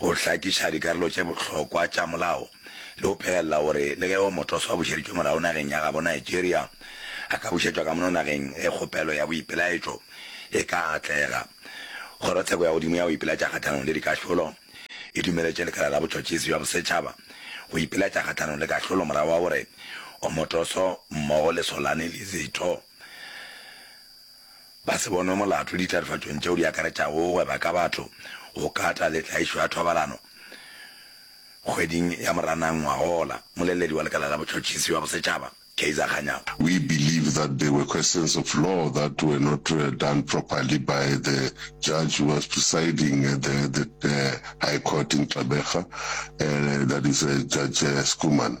go hlakiša dikarolo tše bohlokwa tša molao le go phegelela gore le ge yo motoso a bušeditšwe morago nageng ya gabo Nigeria, a ka bušetšwa ka mono nageng ge kgopelo ya boipelaetšo e ka atlega. Kgorotsheko ya godimo ya go ipelaetša kgahlanong le dikahlolo e dumeletše Lekala la Botšhotšhisi bja Bosetšhaba go ipelaetša kgahlanong le kahlolo morago ga gore Omotoso mmogo le Solane Lizitho, Ba se bonwe molato ditlharifatšong tšeo di akaretšago go gweba ka batho, go kata le tlaišo ya thobalano. Kgweding ya Moranang ngwagowola, moleledi wa Lekala la Botšhotšhisi bja Bosetšhaba, Kaizer Kganyago, We believe that there were questions of law that were not done properly by the judge who was presiding at the High Court in Gqeberha, that is Judge Schoeman.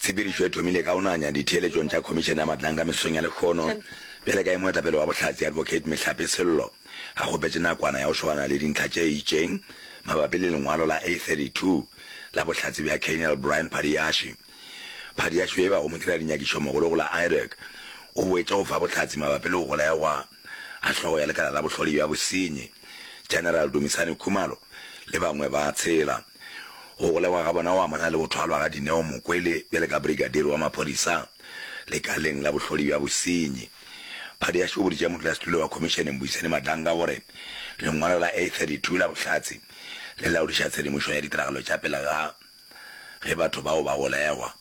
Tshepedišo e thomile ka go nanya ditheeletšong tša Khomišene ya Matlanka mesong ya lehlono bjale ka ge moetapele wa Bohlatse Advocate Mehlape Sello a kgopetše nakwana ya go šogana le dintlha tše itšeng mabapi le lengwalo la A32 la Bohlatse bja Colonel Brian Phadiashe. Phadiashe yo e bago modira-dinyakišo mogolo go la IDOC o boetše go fa bohlatse mabapi le go golegwa ga hlogo ya lekala la bohloli bja bosenyi General Dumisani Khumalo le bangwe ba tshela. Go golegwa ga bona go amana le go thwalwa ga Dineo Mokwele bjale ka brigadiri wa maphodisa lekaleng la bohlodi bja bosenyi. Phadiaše o boditše modulasetulo wa khomišene Mbuyiseni Madanga gore lengwalo la A32 la bohlatse le laodiša tshedimošo ya ditiragalo tša pele ga ge batho bao ba golegwa.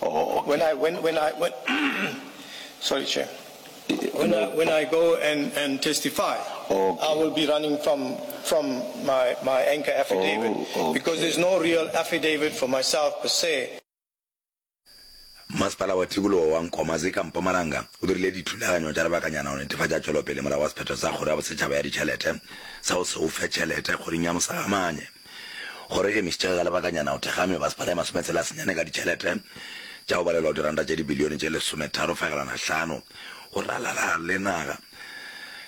When I, when, when I, when, sorry, Chair. When I, when I go and, and testify, okay. I will be running from, from my, my anchor affidavit oh, okay. because there's no real affidavit for myself per se. Masepala wa Tikologo wa Nkomazi ka Mpumalanga o dirile dithulaganyo tša lebakanyana go netefatša tšwelopele morago wa sephetho sa Kgoro ya Bosetšhaba ya Ditšhelete sa go se o fe tšhelete kgoring ya Mosagamanye. Kgoro e emišitše ka lebakanyana go thekga mebaspala e masometshela senyane ka ditšhelete tša go balelwa go diranta tše dibilione tše lesometharo fegelwana hlano go ralala le naga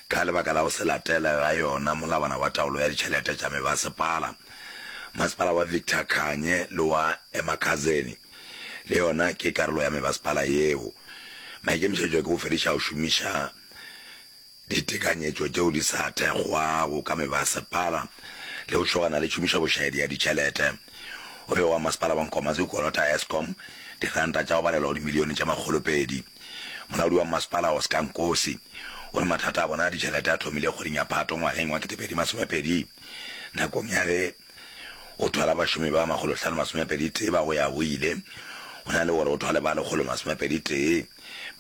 ka lebaka la go se latele ga yona molawana wa taolo ya ditšhelete tša mebasepala. Masepala wa Victor Khanye le wa Emakhazeni le yona ke karolo ya mebasepala yeo. Maikemišetšo ke go fediša go šomiša ditekanyetšo tšeo di sa thekgwago ka mebasepala le go tšhogana le tšhomišo bošaedi ya ditšhelete. O be wa masepala wa Nkomazi o kolota Eskom diranta tša go balelwa go dimilione tše makgolopedi. Molaodi wa masepala Oscar Nkosi o re mathata a bona a ditšhelete a thomile kgweding ya Phato ngwageng wa 2020 nakong ya ge O thwala bašomi ba makgolohlano masomepeditee ba go ya go ile, go na le gore o thwale ba lekgolo masomepeditee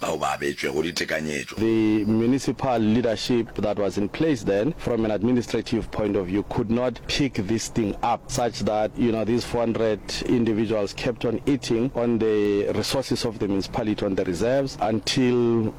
bao ba abetšwego ditekanyetšo. The municipal leadership that was in place then, from an administrative point of view, could not pick this thing up, such that you know these four hundred individuals kept on eating on the resources of the municipality, on the reserves, until.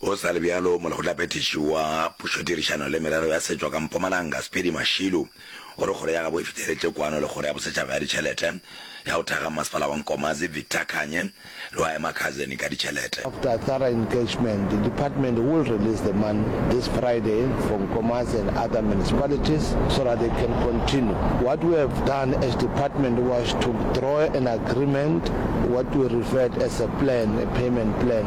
Go sa le bjalo, molekgotlaphethiši wa Pušodirišano le Merero ya Setšo ka Mpumalanga, Speedy Mashilu, o re kgoro ya gabo e fihleletše kwano le kgoro ya bosetšhaba ya ditšhelete ya go thekga mmasepala wa Nkomazi, Victor Khanye, le wa Emakhazen ka ditšhelete. After a thorough engagement, the department will release the money this Friday for Nkomazi and other municipalities so that they can continue. What we have done as department was to draw an agreement, what we referred as a plan, a payment plan,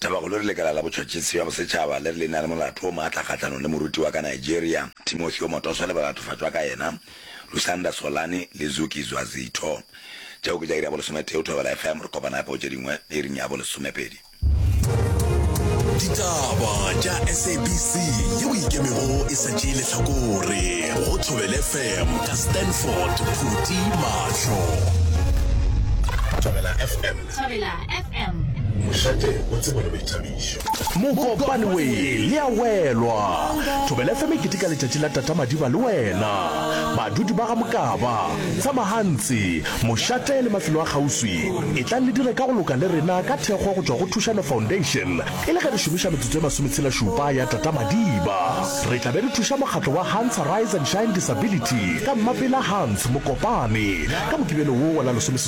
Tabakgolo re lekala la botšhotšhisi bja bosetšhaba le re le na le molato o maatla kgahlanong le moruti wa ka Nigeria, Timothy Omotoso le balatofatšwa ka yena, Lusanda Solani le Zuki Zwazitho. Tšeo ke tša iri ya bolesometee go Thobela FM. Re kopana gape go tše dingwe iring ya bolesomepedi. Ditaba tša SABC yeo e ikemego e sa tšee lehlakore go Thobela FM ka Stanford Phuti Mahlo. Thobela FM. Thobela FM. Mošate o tseba le boithabišo. Mokopane we le a welwa. Thobela FM e keteka letšatši la Tata Madiba le wena. Badudi ba ga Mokaba, Tsamahantsi, Mošate le mafelo a kgauswi, etlang le dire ka go loka le rena ka thekgo go tšwa go Thušano Foundation e le ge re šomiša metsotso e masometshela-šupa ya Tata Madiba. Re tla be re thuša mokgatlo wa Hans Arise and Shine Disability ka Mmapela Hans Mokopane ka Mokibelo wo wa la lesomeseswai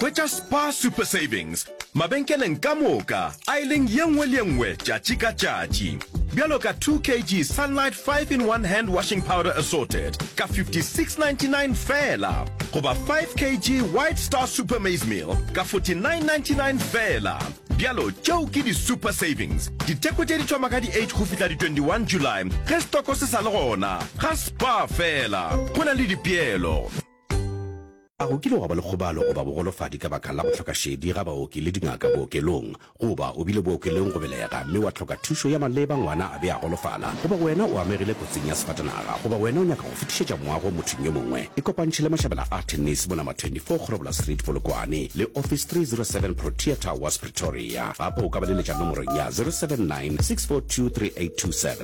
hwetša spar super savings mabenkeleng ka moka a e leng ye nngwe le ye nngwe tšatši ka tšatši bjalo ka 2 kg sunlight 5 in 1 hand washing powder assorted ka 5699 fela goba 5 kg white star super maize meal ka 4999 fela bjalo tšeo ke di-super savings diteko tše di thoma ka di-8 go fihla di-21 july ge stoko se sa le gona ga Kwa fela, go na le dipeelo. A go kile wa ba le kgobalo goba bogolofadi ka baka la go hloka šedi ga baoki le dingaka bookelong? Goba o bile bookelong go belega mme wa hloka thušo ya maleba ngwana a be a golofala? Goba wena o amegile kotsing ya sefatanaga? Goba wena o nyaka go fetišetša moago mothong yo mongwe? Ikopantšhe le Mashabela a Tennis mo Nama 24 Kgorobola Street, Polokwane, le Office 307 Protea Towers, Pretoria. Gape o ka ba leletša nomorong ya 079 642 3827.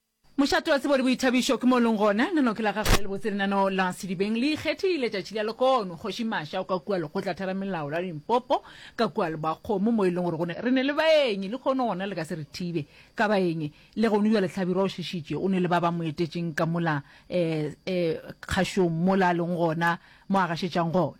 Mošate wa tsebo le boithabišo ke mo o leng gona. Nano ke la gago la lebotse lenano la Sedibeng le ikgethile tšatši la lekono. Kgoši Masha o ka kua lekgotla theramelao la Limpopo ka kua Lebakgomo mo e leng gore go ne re ne le baenyi lekgono gona le ka se re thibe ka baenyi le gono bjale Tlhabirwa o šišitše o ne le ba ba mo etetšeng ka mola eh eh kgašong mola a leng gona mo a gašetšang gona.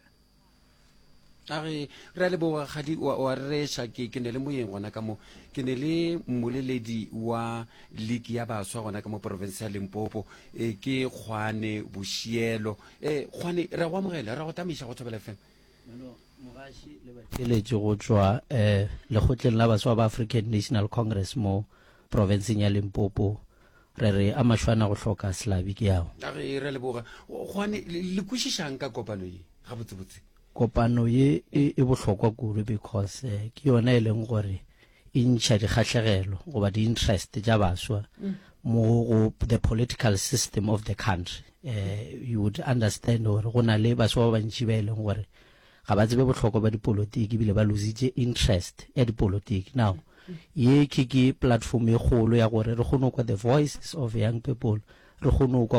a re re a leboga gadi wa rereša ke ke ne le moyeng gona ka mo ke ne le mmoleledi wa league ya baswa gona ka mo porofense ya limpopo e ke kgwane bošielo e kgwane re go amogela re go tamaiša go thobela fm mogaši le batheletše go tšwa um eh, lekgotleng la baswa ba african national congress mo porofenseng ya limpopo Re re a mašwana go hloka selabi ke ao. A re re leboga. Gwane le kwešišang ka kopano ye gabotsebotse? Kopano ye e, e bohlokwa kudu because eh, ke yona e leng gore e ntšha dikgahlegelo goba di-interest tša baswa mm. mo go the political system of the country. Eh, you would understand gore go na le baswa ba bantši ba e leng gore ga ba tsebe bohlokwa ba dipolotiki ebile ba lositše interest ya dipolotiki now ye ke ke platform e kgolo ya gore re kgone go kwa the voices of young people re kgone go kwa